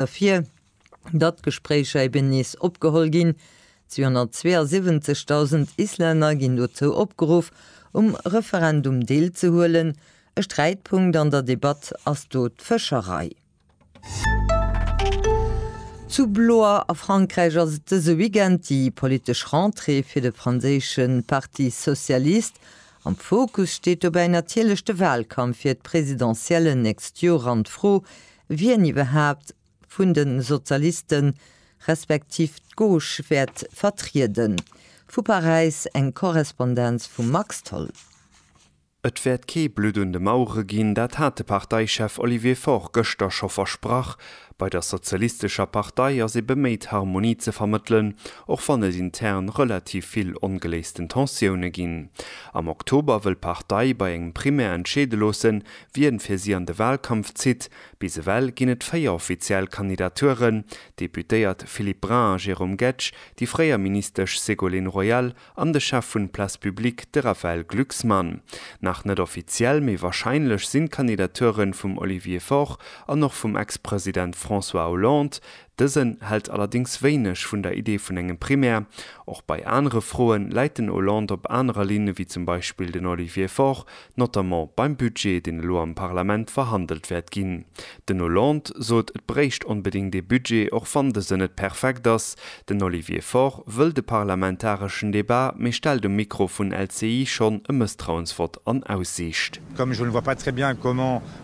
ervir, datt d'Gespréicher eben nees opgeholl ginn. 272.000 Islänner ginn dozou opgeruff, um Referendum deelzehuelen. E Sträitpunkt an der Debatt ass do d'Fëscherei. Zu Blois a Frankräich ass et dëse Weekend déi politesch Rentrée fir de franséische Parti socialiste. Am Fokus steet dobäi natierlech de Walkampf fir d'Presidentiellen nächst Joer an d'Fro, wien iwwerhaapt vun de Sozialisten, respektiv d'Gauche wäert vertrieden. Vu Paräis eng Korrespondenz vum Max Tholl. Et wäert kee Blutt un de Mauere ginn, dat hat de Parteichef Olivier Faure gëschter scho versprach. Bei der sozialistescher Partei ass ee beméit Harmonie ze vermëttelen, och wann et intern relativ vill ongeléisten Tensioune ginn. Am Oktober wëll d'Partei bei engem Primär entscheede loossen, Wien fir si an de Wahlkampf zitt? Bis ewell ginn et 4 offiziell Kandidaturen, d'Deputéiert Philippe Brun a Jérôme Guedj, déi fréier Ministesch Ségolène Royal an de Chef vun Place Publique, de Raphaël Glucksmann. Nach net offiziell, mee warscheinlech sinn d'Kandidaturen vum Olivier Faure an och vum Ex-President François Hollande, Dësen hält allerdéngs wéineg vun der Idee vun engem Primär. Och bei anere Froe läit den Hollande op anerer Linn ewéi zum Beispill den Olivier Faure, notamment beim Budget, deen elo am Parlament verhandelt wäert ginn. Den Hollande sot, et bréicht onbedéngt ee Budget, och wann dësen net perfekt ass. Den Olivier Faure wëll de parlamentareschen Debat, mee stellt um Mikro vun LCI schonn e Mësstrauensvott an Aussiicht.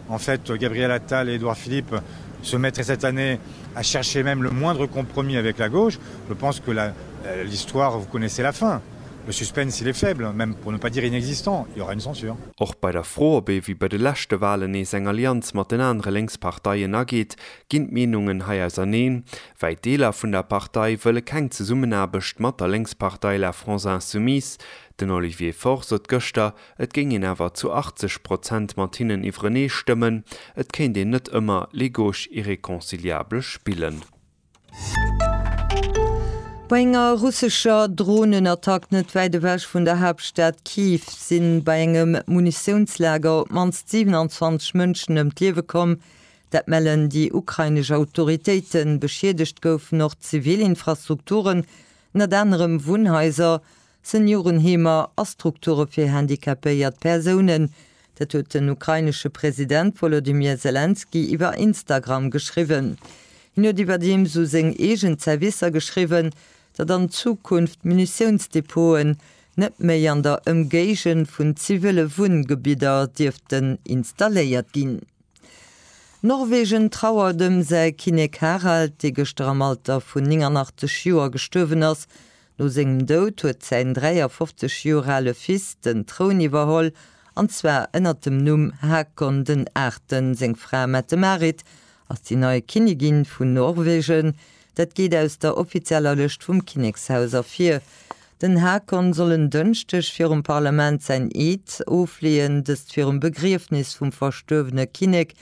En fait, Gabriel Attal et Édouard Philippe se mettraient cette année à chercher même le moindre compromis avec la gauche. Je pense que la, l'histoire, vous connaissez la fin. Le suspense, il est faible, même pour ne pas dire inexistant, il y aura une censure. Och bei der Fro, ob ee wéi bei de leschte Wahlen nees eng Allianz mat den anere lénks Parteien ageet, ginn d'Meenungen hei auserneen. Wäit Deeler vun der Partei wëlle keng Zesummenaarbecht mat der Lénkspartei La France Insoumise. Den Olivier Faure sot gëschter, Et géing een awer zu 80 Prozent mat hinnen iwwerenee stëmmen, et kéint een net ëmmer les gauches irréconciliables spillen. Bei enger russescher Dronenattack net wäit ewech vun der Haaptstad Kyiv si bei engem Munitiounslager op d'mannst 27 Mënschen ëm d'Liewe komm. Dat mellen déi ukrainesch Autoritéiten. Beschiedegt goufen och zivil Infrastrukturen, ënnert anerem Wunnhaiser. Seniorenheemer a Strukture fir handicapéiert Persounen. Dat huet den ukrainesche President Wolodymyr Selenskyj iwwer Instagram geschriwwen. Hien huet iwwerdeems u seng eegen Zerwisser geschriwwen, datt an Zukunft Munitiounsdepoten net méi an der Ëmgéigend vun zivile Wunngebidder dierften installéiert ginn. Norwegen trauert ëm säi Kinnek Harald, dee gëschter am Alter vun 89 Joer gestuerwen ass. No sengem Doud huet säin 53 Joer ale Fils den Troun iwwerholl, an zwar ënnert dem Numm Hakon den Achten. Seng Fra Mette-Marit ass déi nei Kinnigin vun Norwegen. Dat geet aus der offizieller Lëscht vum Kinnekshaus ervir. Den Hakon soll en Dënschdeg virum Parlament säin Eed ofleeën, dëst virum Begriefnis vum verstuerwene Kinnek.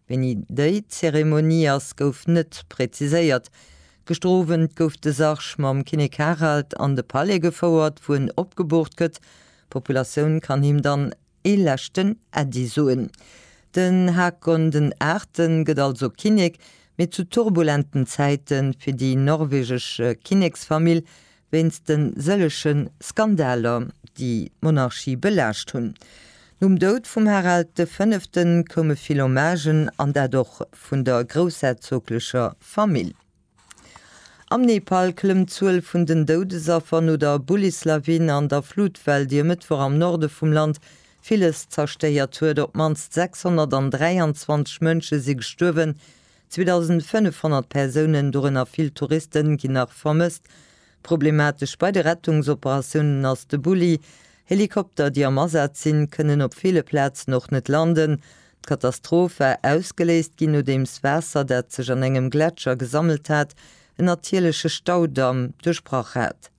Wéini déi Zeremonie ass, gouf net preziséiert. Gëschter Owend gouf de Sarg mam Kinnek Harald an de Palais gefouert, wou en opgeboort gëtt. D'Populatioun kann him dann ee leschten Äddi soen. Den Haakon den Aachten gëtt also Kinnek, mee zu turbulenten Zäiten fir déi norwegesche Kinneksfamill, wéinst de sëllege Skandaler, déi d'Monarchie belaascht hunn. Nom Doud vum Harald de Fënnefte koume vill Hommagen, an dat och vun der groussherzoglecher Famill. Am Nepal klëmmt d'Zuel vun den Doudesaffer no der Bullislawin an der Flutwell, déi e Mëttwoch am Norde vum Land villes zerstéiert huet. Op d'mannst 623 Mënsche si gestuerwen, 2.500 Persounen, dorënner vill Touristen, ginn nach vermësst. Problematesch bei de Rettungsoperatiounen ass de Bulli. Helikopter, déi am Asaz sinn, kënnen op ville Plazen och net landen. D'Katastroph war ausgeléist ginn, nodeems Waasser, dat sech an engem Gletscher gesammelt hat, en natierleche Staudamm duerchbrach hat.